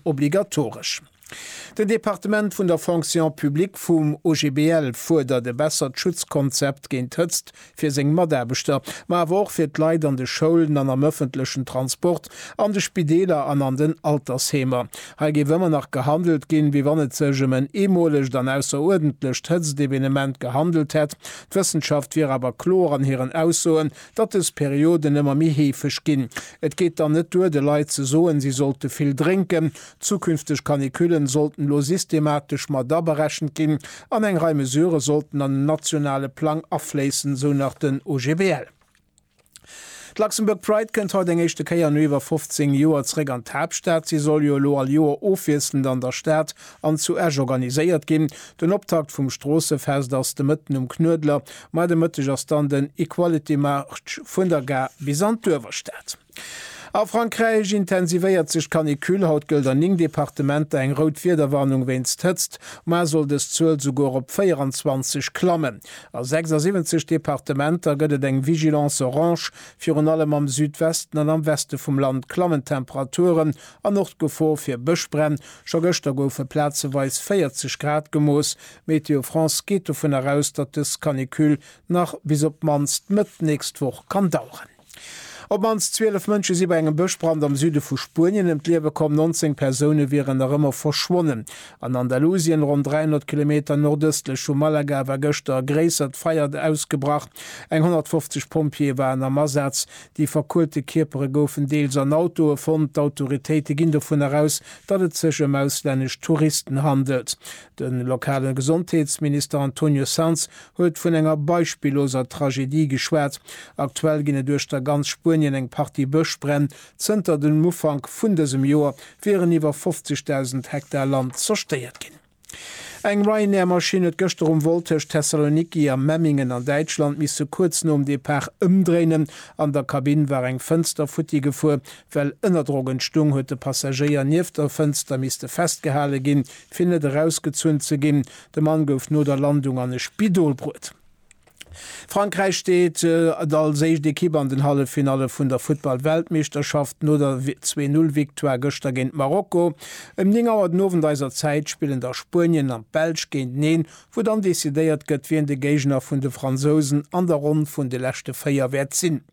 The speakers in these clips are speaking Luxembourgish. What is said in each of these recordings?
obligatoresch. Den Departement vun der Fonction publique vum OGBL fuerdert e bessert Schutzkonzept géint Hëtzt fir seng Mataarbechter, ma awer och fir d'Leit an de Schoulen an am ëffentlechen Transport, an de Spideeler an an den Altersheemer. Hei géif ëmmer nach gehandelt ginn, wéi wann et sech ëm en eemolegt an ausseruerdentlecht Hëtztevenement gehandelt hätt. D'Wëssenschaft wier awer kloer an hiren Aussoen, datt dës Perioden ëmmer méi heefeg ginn. Et geet dann net duer, de Leit ze soen, si sollte vill drénken. Zukünfteg Canicullen sollten elo systematesch mat aberechent ginn an eng Rei Mesurë sollten an den nationale Plang afléissen, esou nach den OGBL. D'Luxembourg Pride kënnt haut eng éischte Kéier no iwwer 15 Joer zréck an d'Haaptstad. Si soll jo elo all Joer ofwiesselnd an der Stad an zu Esch organiséiert ginn. Den Optakt vum Stroossefest ass de Mëtten um Knuedler, ma de Mëtteg ass dann den Equality March vun der Gare bis an d'Uewerstad. A Frankräich intensivéiert sech d'Canicule. Haut gëllt an 9 Departementer eng rout Wiederwarnung wéinst Hëtzt, muer soll dës Zuel souguer op 24 klammen. A 76 Departementer gëtt et eng Vigilance orange. Virun allem am Südwesten an am Weste vum Land klammen d'Temperature An och d'Gefor fir Bëschbränn. Scho gëschter goufe plazeweis 40 Grad gemooss. Météo France geet dovun eraus, datt dës Canicule nach bis op d'mannst Mëtt d'nächst Woch kann daueren. Op d'mannst 12 Mënsche si bei engem Bëschbrand am Süde vu Spuenien ëm d'Liewe komm. 19 Persoune wieren nach ëmmer verschwonnen. An Andalusien, ronn 300 Kilometer nordëstlech vu Malaga, war gëschter e gréissert Feier ausgebrach. Eng 150 Pompjeeë waren am Asaz. Déi verkuelte Kierpere goufen deels an Autoe fonnt. D'Autoritéite ginn dovun eraus, datt et sech ëm auslännesch Touristen handelt. De lokale Gesondheetsminister Antonio Sanz huet vun enger beispilloser Tragedie geschwat. Aktuell ginn et uechter ganz Spuenien eng Partie Bëschbränn. Zënter dem Ufank vun dësem Joer wieren iwwer 50.000 Hektar Land zerstéiert ginn. Eng Ryanair-Maschinn huet gëschter um Vol tëscht Thessaloniki a Memmingen an Däitschland misse kuerz nom Depart ëmdréinen. An der Kabinn war eng Fënster futti gefuer. Well Ënnerdrock entstung, huet de Passagéier nieft der Fënster misste festgehale ginn, fir net erausgezunn ze ginn. De Mann gouf no der Landung an e Spidol bruet. Frankräich steet als éischt Ekipp an den Halleffinalle vun der Futtball-Weltmeeschterschaft no der Zwee Null Victoire gëschter géint Marokko. Ëm 9 Auer den Owend eiser Zäit spillen da Spuenien an d'Belsch géinteneen, wou dann decidéiert gëtt, wien de Géigner vun de Fransousen an der Ronn vun de leschte 4 wäert sinn.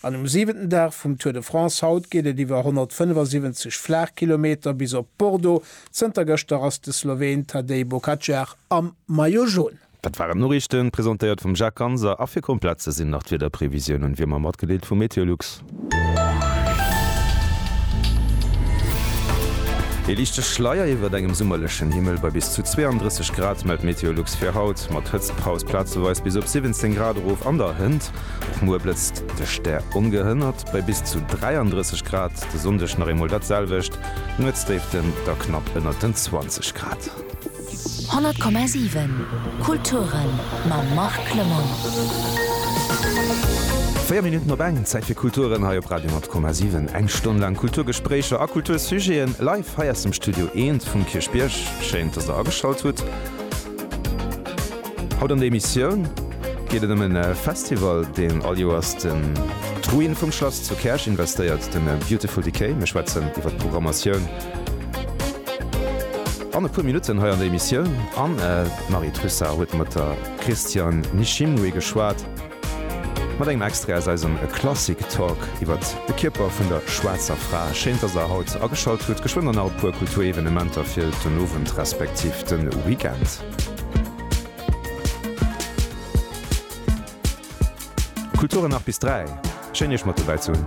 An um siwenten Dag vum Tour de France haut geet et iwwer 175 Flaachkilometer bis op Bordeaux. Zënter gëschter ass de Sloween Tadej Bokacar am Maillot Jaune. Dat waren d'Noriichten, presentéiert vum Jacques Ganser. A fir komplett ze sinn, nach d'Wiederprevisiounen, wéi ëmmer matgedeelt vu Meteolux. Ee liichte Schleier iwwert engem summerlechen Himmel bei bis zu 32 Grad, mellt Meteolux fir haut, mat Hëtztpaus plazeweis bis op 17 Grad erof. An der Hënt och muer blëtzt de Stär ongehënnert bei bis zu 33 Grad. De Sonndeg nach eemol dat selwecht, Nuetsdéiften da knapp ënnert den 20 Grad. 100,7 Kulturen mam Marc Clement. Véier Minutten op eng, Zäit fir Kulturen hei op Radio 10,7. Eng Stonn laang Kulturgespréicher a Kultursujeten live hei aus dem Studio Eent vum Kierchbierg. Schéin, dass der ageschalt hutt. Haut an der Emissioun geet et ëm e Festival, deen all Joers den d'Ruine vum Schlass zu Käerch investéiert, de Beautiful Decay. Mir schwätzen iwwer d'Programmatioun. An e puer Minutten hei an der Emissioun an d'Marie Trussart huet mat der Christiane Nishimwe geschwat, mat engem Extrait aus eisem Klassik Talk iwwert de Kierper vun der schwaarzer Fra. Schéin, dass der haut ageschalt hutt. Geschwënn dann nach e puer Kulturevenementer fir den Owend respektiv de Weekend. Kulturen 8 bis 3. Schéin Iech mat dobäi ze hunn.